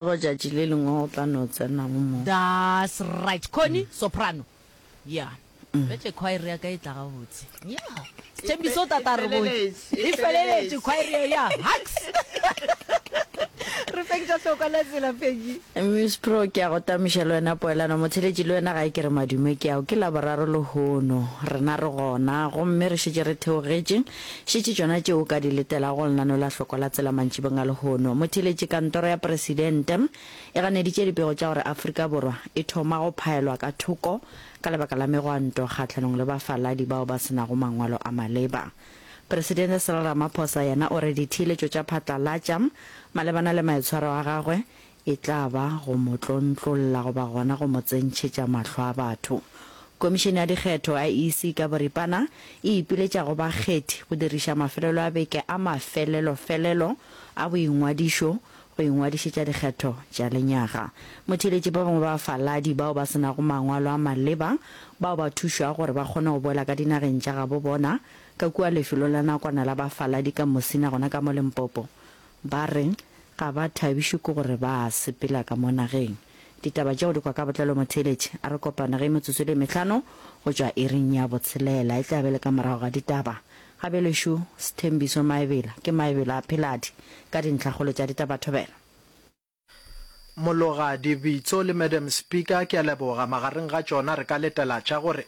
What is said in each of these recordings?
Tšatši le lengwe o tla no tsena go mo. That's right. Connie, soprano. Yeah. Bjale choir ya ka e tla gabotse. Yeah. Sethembiso o tla tla re botse. E feleletše choir yeo ya Hacks. Re feng tša hlokwa la tsela Peggy. Miss Pro, ke a go tamiša le wena poelano. Motheletši le wena gae ke re madume ke ao. Ke Laboraro lehono. Rena re gona. Gomme re šetše re theogetše. Šetše tšona tšeo o ka di letelago go lenaneo la Hloko la Tsela mantšibong a lehono. Motheeletši Kantoro ya Presidente e ganeditše dipego tša gore Afrika Borwa e thoma go phaelwa ka thoko ka lebaka la megwanto kgahlanong le bafaladi bao ba se nago mangwalo a maleba. Presidente Cyril Ramaphosa yena o re ditheeletšo tša phatlalatša malebana le maitshwaro a gagwe e tla ba go mo tlontlolla goba gona go mo tsentšhetša mahlo a batho. Komišene ya Dikgetho, IEC, ka boripana e ipiletša go bakgethi go diriša mafelelo a beke a mafelelofelelo a boingwadišo go ingwadišetša dikgetho tša lenyaga. Motheeletši ba bangwe ba bafaladi bao ba se nago mangwalo a maleba bao ba thušwago gore ba kgone go boela ka dinageng tša gabo bona ka kua lefelong la nakwana la bafaladi ka Musina gona ka mo Limpopo Ba re ga ba thabišwe ke gore ba sepela ka mo nageng. Ditaba tšeo di kwa ka botlalo mo theeletše a re kopana ge metsotso e le mehlano go tšwa iring ya botshelela. E tla be le ka morago ga ditaba. Gabjelešu Sthembiso Maebela ke Maebela a Pheladi ka dintlhakgolo tša ditabathobela. Mologadi Bitso le Madam Speaker ke a leboga, magareng ga tšona re ka letela tša gore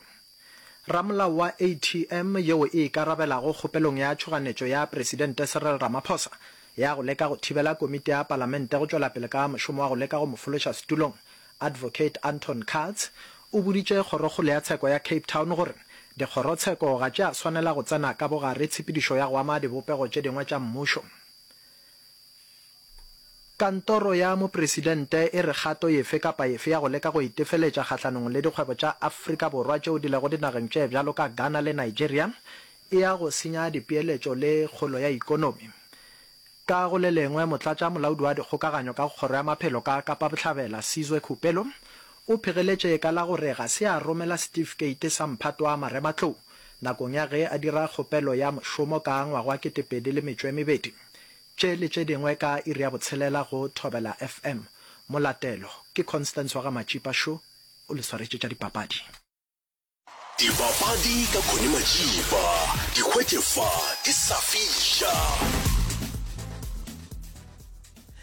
Ramolao wa ATM yeo e ikarabelago kgopelong ya tšhoganetšo ya Presidente Cyril Ramaphosa ya go leka go thibela Komiti ya Palamente go tšwela pele ka mošomo wa go leka go mo fološa setulong Advocate Anton Kats o boditše Kgorokgolo ya Tsheko ya Cape Town gore dikgorotsheko ga tše a swanela go tsena ka bogare tshepedišo ya go ama dibopego tše dingwe tša mmušo. Kantoro ya Mopresidente e re kgato yefe kapa yefe ya go leka go itefeletša kgahlanong le dikgwebo tša Afrika Borwa tšeo di lego dinageng tše bjalo ka Ghana le Nigeria e ya go senya dipeeletšo le kgolo ya ikonomi. Ka go le lengwe, Motlatša Molaodi wa Dikgokaganyo ka go Kgoro ya Maphelo ka Kapa Bohlabela, Sizwe Khupelo, o phegeletše ka la gore ga se a romela setifikeiti sa mphato wa marematlou nakong ya ge a dira kgopelo ya mošomo ka ngwaga wa 2012. Tše le tše dingwe ka iri ya botshelela go Thobela FM. Molatelo ke Constance wa ga Matšipa šo o le swaretše tša dipapadi. Dipapadi ka Connie Matšipa, di hwetše fa di sa fiša.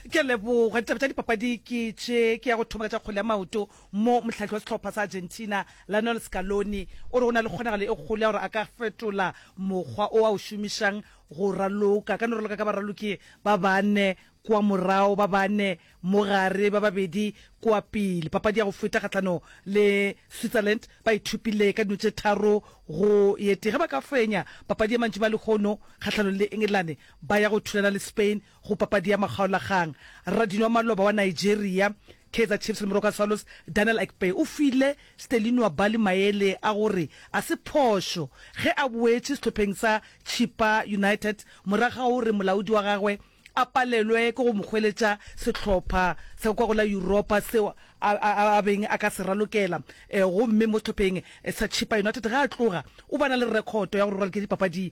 Ke a leboga. Ditaba tša dipapadi ke tše ke ya go thoma ka tša kgole ya maoto mo mohlahi wa sehlopha sa Argentina Lionel Scaloni o re o na le kgonagalo e kgolo ya gore a ka fetola mokgwa o a o šomišang Go raloka, ka no raloka ka baraloki ba bane kua morago, ba bane mo gare, ba babedi kua pele. Papadi ya go feta kgahlano le Switzerland, ba e thopile ka dino tše tharo go ye tee. Ge ba ka fenya papadi ye mantšiboa a lehono kgahlano le Engelane, ba ya go thulana le Spain Go papadi ya makgaolakgang, radino wa maloba wa Nigeria, Kaizer Chiefs le Moroka Swallows, Daniel Akpeyi o file Stelinua Bali maele a gore a se phošo ge a boetše sehlopheng sa Chippa United morago ga gore molaodi wa gagwe a palelwe ke go mo hweletša sehlopha sa kwa go la Yuropa seo a beng a ka se ralokela gomme mo sehlopheng sa Chippa United ge a tloga o ba na le rekhoto ya gore o ralokile dipapadi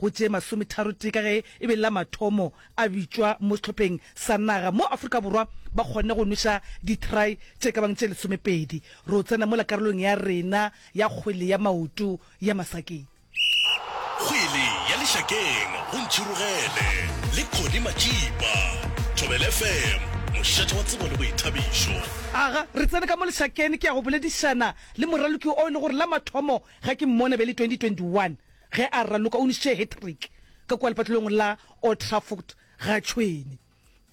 Go tše masometharotee ka ge e be la mathomo a bitšwa mo sehlopheng sa naga mo Afrika Borwa ba kgonne go nweša ditry tše ka bang tše lesomepedi. Ro tsena mola karolong ya rena ya kgwele ya maoto ya masakeng. Kgwele ya lešakeng go Ntšhirogele le Connie Matšipa, Thobela FM, mošate wa tsebo le boithabišo. Aga re tsene ka mo lešakene ke ya go boledišana le moraloki o e le gore la mathomo ga ke mmone be le 2021. Ge a raloka o ntšhitše hat-trick ka kua lepatlelong la Old Trafford ga tšhwene.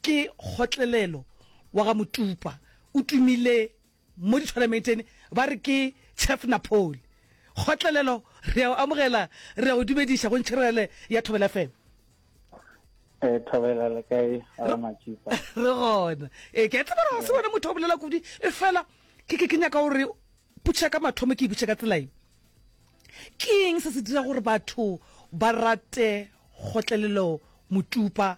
Ke kgotlelelo wa ga Motupa. O tumile mo dithwalameiteng ba re ke Chef Napoli. Kgotlelelo re a o amogela, re a go dumediša go Ntšherele ya Thobela FM. Eh Thobela le kae ga Matšipa? Re gona. Eh ke a tseba gore ga se wena motho a bolela kudu efela ke ke ke nyaka gore Potša ka mathomo ke e botše ka tselaye. Ke eng se se dira gore batho ba rate kgotlelelo motupa?